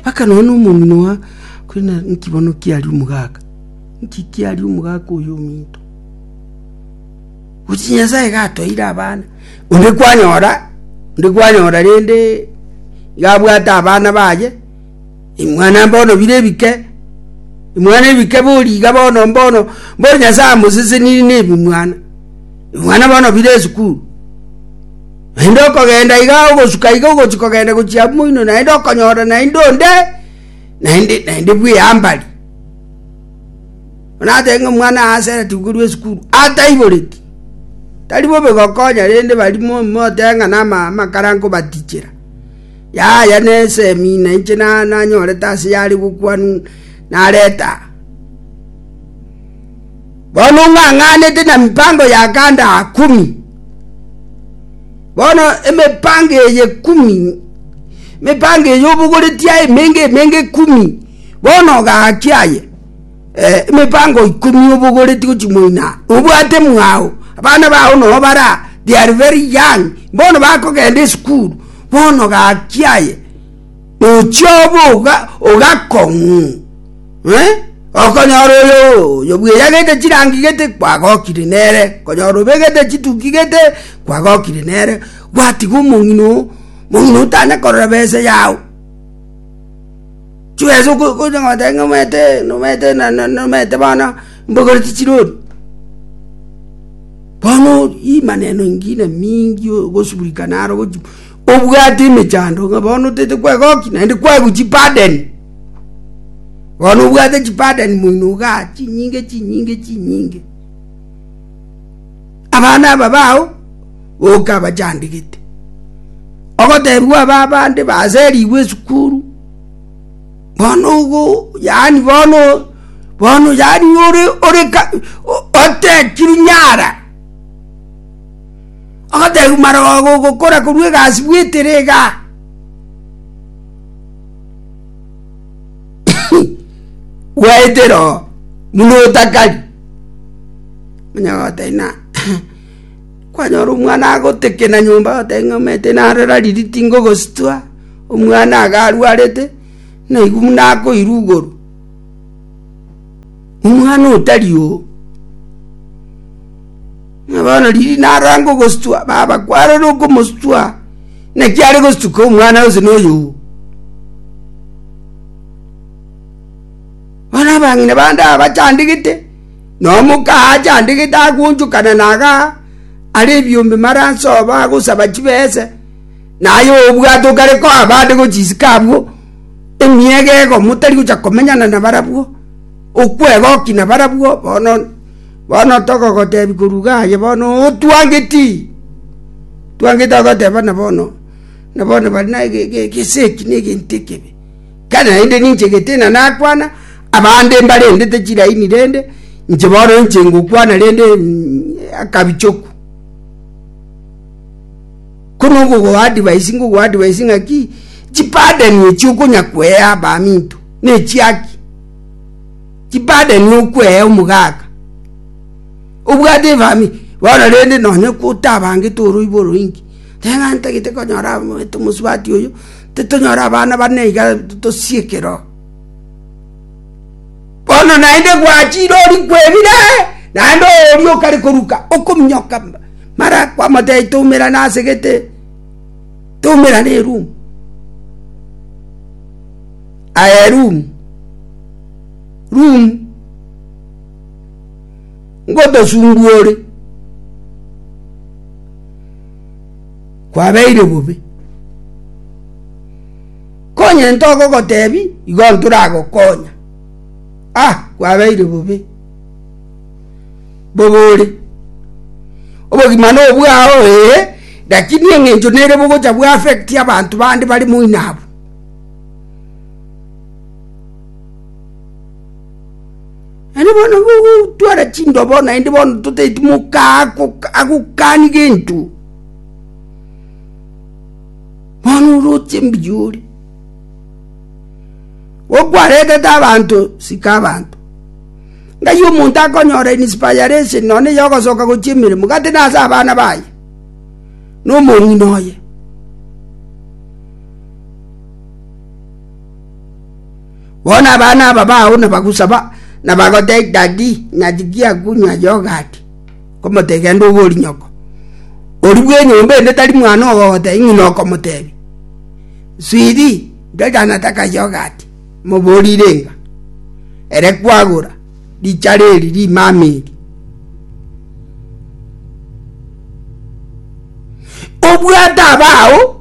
Akanoa nomonino oa, korende naki bono kiaria omogaka? Naki kiaria omogaka oyo ominto? Gochi Nyasae iga atoeire abana, onde kwanyora, onde kwanyora rende iga abwate abana baye, mwana mbono bire ebike, mwana ebike bori iga bono mbono, bono Nyasae amosesenirie na ebimwana, ebimwana bono bire esukuru. Naende okogenda iga ogosuka iga ogochia kogenda gochia abwo moino, naende okonyora naende onde, naende naende bw'eambari. Bono natebe ng'a omwana Aseri tikorwa esukuru, ataiboreti. Tari bobe gokonya rende barimo motebe ng'a nama amakara nkobatichera. Yaya na esemina inche na nanyorete ase yare gokwanwa narete aa. Bono ng'ang'anete na mipango ya kanda kumi. Bono emipango eye kumi, emipango eye obogoreti aye emenge emenge kumi, bono ogaki aye emipango ikomi obogoreti gochi moino aa, obwate mwao, abana bao no bara they are very young, bono bakogenda esukuru, bono gaki aye. Nochiobe oga, ogakong'u, eh, okonyora oyo oyo bweyagete chirangi gete kwagokire nere, okonyora obegete chituki gete kwagokire nere, gwatiga omong'ina oo, omong'ina oo tanya korora besa yao. Chibesa oko- okonya goteba ng'a omanyete nomanyete na- na- nomanyete bono mbogoreti chirori. Bono ori maneno ingine mingi ogosuburikana aro ogochi Obwate emechando ng'a bono otaete kwegokia, naende kwaigwa chipadeni. Bono obwate chipadeni moino iga chinyinge chinyinge chinyinge. Abana aba bao okabachandegete. Ogotebiwa aba abande baserigwe esukuru, bono igo yaani bono bono yaani ore ore ka otechiri nyara. Ogoteebwa marogo ogokora korwa egasi bw'etere iga. Gwaetera oo buna otakari. Onye gotebi na kwanyora omwana agotekena nyomba otebi ng'a omanyete naro rariri tingogositwa omwana iga arwarete, naigwa buna akoirugoru. Omwana otari oo, na bono riria narange ogosutua, baba kwarore okomosutua, naki are gostuka omwana onsi na oyoo. Bono abang'ina bande aba bachandegete, na omoka aa achandegete agonchokana na igaa, are ebiombe mara nse oo bagosaba chibesa, na aye obwate okare koa abande gochia isiko abwo, emiaka egokwo motari gochia komenyana na barabwo. Okwegoki nabarabwo bono, bono togogoteebia koruga aye bono otwangeti, twangeti ogoteba na bono, na bono bari na egesegi na egento ekebe. Ekero naende ninche getina nakwana, abande mbarendete chilaini rende, inche bono inche ngokwana rende akabichoku. Ko nogogoa advice ngogoa advice ng'aki, chipadeni echi okonya koea abaminto. nechiaki, chibade nokwea omogaka, obwate efamiri bono rende nonye kotabangete oroibo oroinge, tari ng'a ntagete konyora omanyete omosubati oyo, titonyora abana bane iga tosie ekero. Bono naende gwachire orikwe ebire naende oria okare koruka okominyoka mara kwamotebi toumerane ase gete, toumerane erumu. aye Rum, Rum, ngotosunguore, kwabeire bobe. Konye ntogogotebi igo ntoragokonya, ah, kwabeire bobe. Bobore, obogima nobwao ee, lakini eng'encho nere bogocha bwa affect abanto bande bare moino abwo. Naende bono gogotwara chindobo, naende bono totaeti moka agokani gento, bono oroche mbuya ore, gokwaretete abanto, sika abanto. Ng'ai omonto akonyora inspiration nonya ya ogosoka gochia emeremo, gati nase abana baye, na omong'ina oye. Bono abana aba bao nabagusaba, na bagotebia Dadi ng'a tigia kunywa yogati, nkomotebia genda obe ori nyoko. Oria bw'enyomba ende tari mwana ogogotebia ng'ina okomotebia, Swiri, ndoche nataka yogati, moborire ng'a, Ere kwagora richara eri rimama eri. Obwate abao.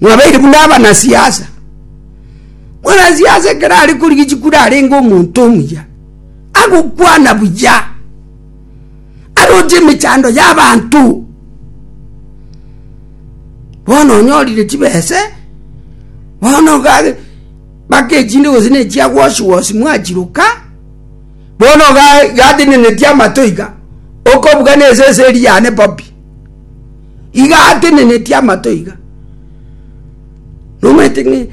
Mwabeire buna abanasiasa. Mwanasiasa ekero are korigia chikura arenge omonto omuya, agokwana buya, aroche emechando y'abanto. Bono onyorire chibese, bono gare mpaka echinde gose ne echia wosi wosi mwachiroka, bono ga gateneneti amato iga, okobugana esese eria yane bobi. iga atenenetie amato iga, nomanyete ng'a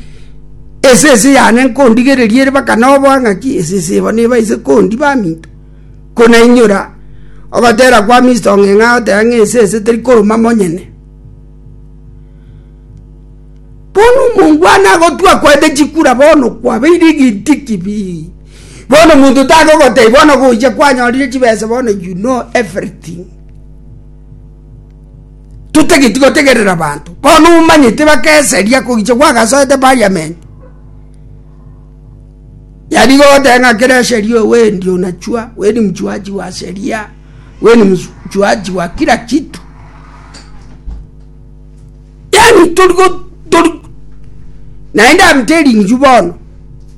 esese yane nkondigereria ere mpaka noboa ng'aki esese eba neba ise kondi baminto, konainyora ogotera kwa Mister Ong'eng'a agoteba ng'a esese teri koruma monyene. Bono omonto one agotwa akoete chikura bono kwabeire egenti kibii, bono omonto tare ogoteba bono gochia kwanyorire chibesa bono you know everything. totageti gotegerera abanto bono omanyete bakeseria kogicha gwagasoete parliament yari goteba ng'a kera eseri owe endi onachwa weni mchuaji wa sheria weni mchuaji wa kira kitu yaani tori go tori naende arute ring'chu bono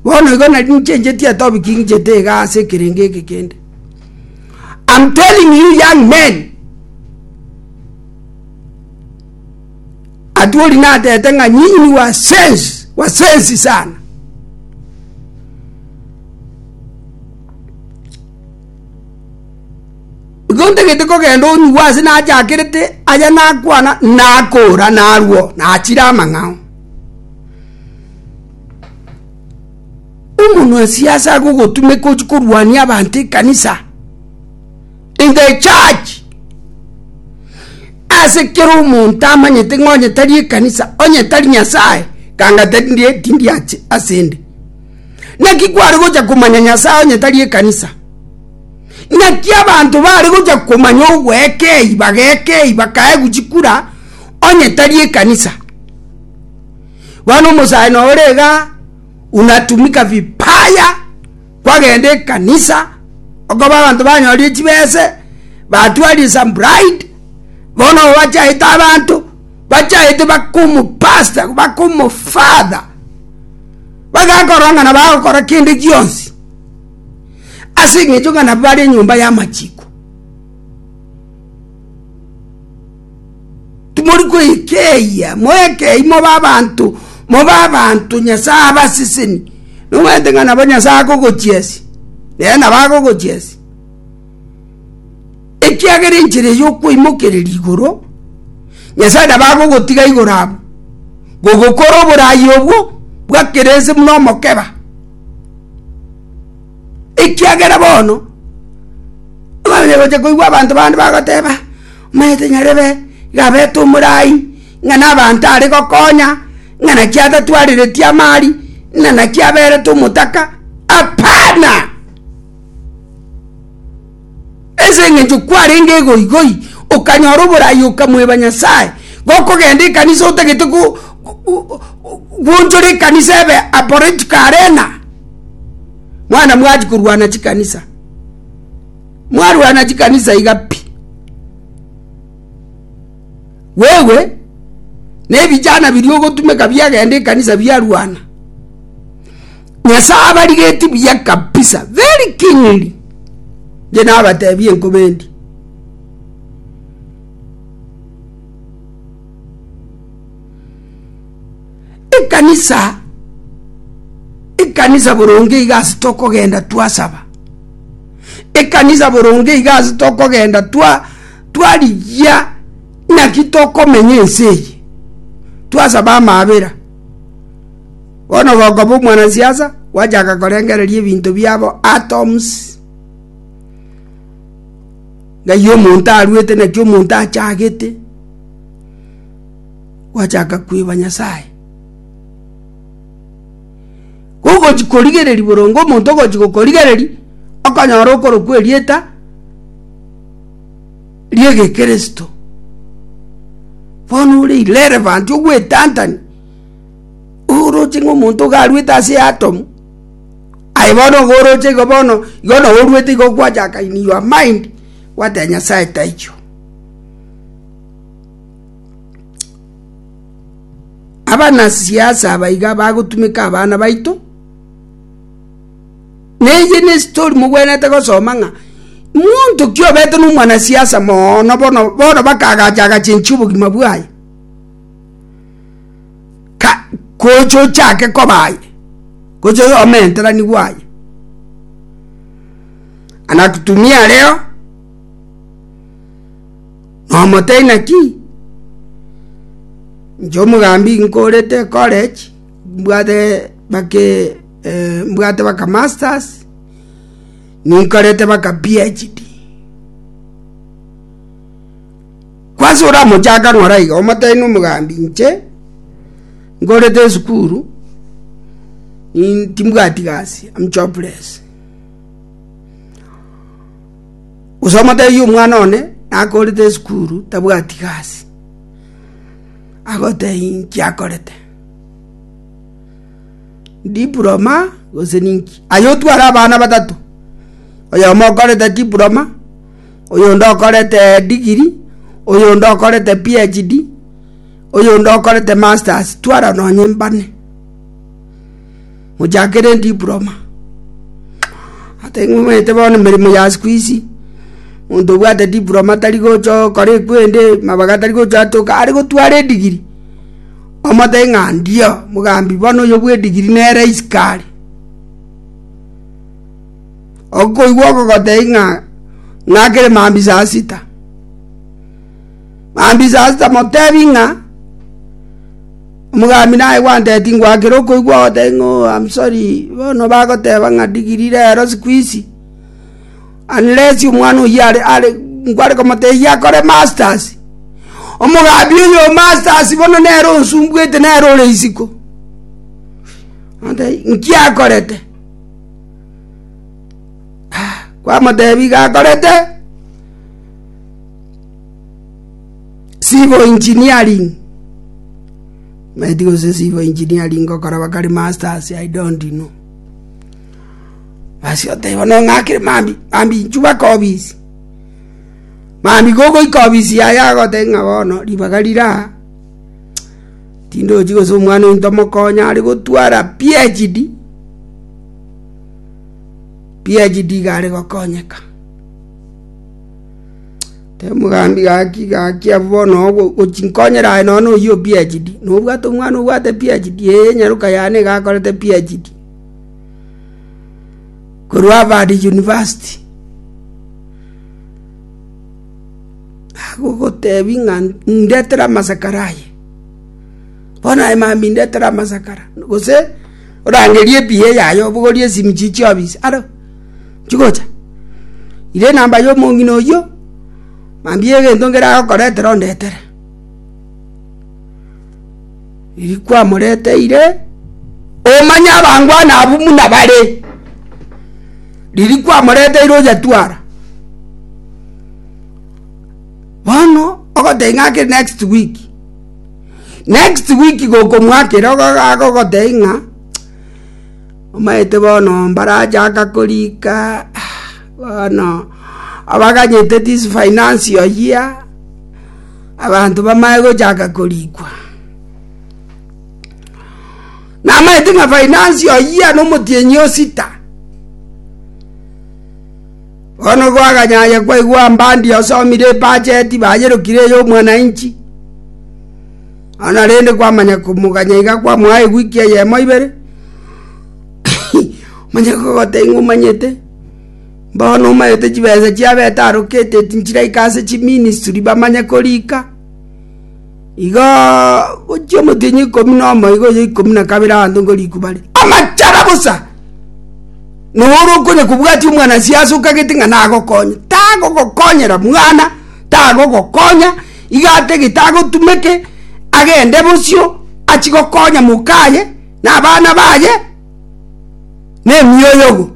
bono igo nari nchencheti atobi king'ichete igaa ase ekerengo eke kende. I'm telling you young men, Atwoli natete ng'a nyinyi ni wasensi, wasensi sana. Igo ntagete kogenda onyigwa ase nachakerete aya nakwana nakora narwo nachire amang'ao. Omonwa-siasa agogotumeka ochie korwania abanto ekanisa, in the church. Ase kera omonto amanyete ng'a onye tari ekanisa, onye tari Nyasae, kanga tari ndie tindi ache ase ende. Naki kware gocha komanya Nyasae onye tari ekanisa. Naki abanto bare gocha komanya ogweka eyi, bageka eyi, bakaegwa chikura onye tari ekanisa. Bono omosae noo ore igaa. unatumika vibaya kwagenda ekanisa okoba abanto banyorie chibese batwarie some bride bono bachaete abanto bachaete bakomopasta bakomofather bagakorora ng'a nabo agokora kende gionsi ase eng'encho ng'a nabo bare enyomba y'amachiko. Timori kwekeyia, moeke eyio mobe abanto, mobe abanto Nyasae abaseseni. Nomanyete ng'a nabo Nyasae akogochiesia, nere nabo agogochiesia. Ekiagera enchera eyio okweimokereria igoro, Nyasae nabo agogotiga igoro abwo, gogokora oboraai obwo bwa kera ense buna omokeba. Ekiagera bono abana bagocha koigwa abanto bande bagoteba, Omanyete nyarebe iga abete omorai ng'a nabanto are gokonya, ng'a naki atatwarereti amari, ng'a naki aberete omotaka. Apana! Ase engencho kwarenge egoigoi, okanyora oboraai okamweba Nyasae, gokogenda ekanisa otagete gwonchora ekanisa ebe a political arena. Mwana mwachia korwana chikanisa, mwarwana chikanisa iga pi. Wewe ne ebijana biria ogotumeka biagenda ekanisa biarwana. Nyasae abarigeti buya kabisa very kingly nje nabatebie nkobendi ekanisa ekanisa boronge iga ase tokogenda twasaba ekanisa boronge iga ase tokogenda twa twarigia naki tokomenya ense eye twasaba amabera Bono gokobua omwanasiasa, gwachaka korengereria ebinto biabo atoms, ng'ai omonto aruete, naki omonto achagete, gwachaka kweba Nyasaye. Kogochi korigereria boronge omonto ogochi gokorigereria, okonyora okorokwa erieta ri'egekristo. Bono ore irrelevant, ogwetantani. Oroche ng'a omonto iga aruete ase eatomu, aye bono igo oroche igo bono, igo nao oruete igo gwacha in your mind, gwateba Nyasae taichwe. Abanasiasa aba iga bagotumeka abana baito, na eye na estori mogwenerete gosoma ng'a monto ki obete na omwanasiasa moono bono bono baka agacha agacha enchia obogima bwaye. gocha ochake koba aye gocha omenterani bwaye anakutumia areo nomotebia ng'aki inche omogambi nkorete ecollege mbwate bake mbwate baka masters ninkorete baka phd. Kwase oramochakanwe ore aiga, omotebi nomogambi, Inche ngorete esukuru, in- timbwati gasi, am jobless. Gose omotebi omwana one nakorete esukuru tabwati gasi, agotebi inki akorete? Diploma gose ninki? Aye otware abana batato, oyomo okorete diploma, oyonde okorete digiri, oyonde okorete PHD, oyonde okorete masters twara nonye mbane mochakere diploma ata ing'umete bono emeremo ya sikuizi monto obwate diploma tari gocha okora ekwende mabaga tari gocha atoke are gotwara edigiri omote ng'a ndio mogambi bono oyo bwe digiri nere isiko are. Okoigwa oko gotei ng'a ng'akere mambia saa sita. Mambia saa sita motebi ng'a, omogambi aye gwanteti ngwakere okoigwa ogoteba ng'a oo am sorry, bono bagoteba ng'a digiri rero siku hizi, unless omwana oyio are are nkware komotebia akore masters. Omogambi oyo o masters bono nere onsumbuete nere ore isiko. Naki akorete? Kwamotebia igakorete civil engineering maeti gose civil engineering gokora bakari masters i don't know ase oteba no ng'akire mambia mambia inchu baka obisi mambia gogoika obisi yaye agotebi ng'a bono ribaga rire aa tindochi gose omwana oito mokonye are gotwara PHD. PHD iga are gokonyeka. Tebe omogambi gaki gaki abwo bono ogwo gochi nkonyere aye nonya na oyio PHD. Nobwate omwana obwate PHD ee nyaroka yane iga akorete PHD. Korwa Harvard University. Agogotebi ng'a ndetere amasakara aye. Bono aye mambia indetere amasakara gose. Orangerie ebiya eyaye obogorie esimichi chi'obisi aro chigocha. Ira enamba y'omong'ina oyio, mambia egento nkere agokoretera ondetere. Riria kwamoreteire, omanye abangwana abwo buna bare. Riria kwamoreteire oyetwara, bono ogoteba ng'a ake next week. Next week gokomoakera agogotebia ng'a omanyete bono mbarachaka korika bono abaganyete this financial year abanto bamanye gochaka korikwa namanyete ng'a financial year na omotienyi osita. Bono bwaganyaya kwaigwa mbandi osomire ebacheti baayerokire ey'omwananchi, nonya rende kwamanya komoganya iga kwamoa ewiki eyemo ibere, manya kogoteba ng'a omanyete, mbono omanyete chibesa chiabete allocated nchiraika ase chiministry bamanye korika. Igo gochia omotienyi ikomi na omoigo oye ikomi na kabere abanto nko rikuba ria amachara bosa. Nonya ore okonya kobwatia omwana siase okagete ng'a nagokonye, tagogokonyera mwana, tagogokonya, iga atagete agotumeke agende bosio achie gokonya mokaye na abana baye na emioyogo.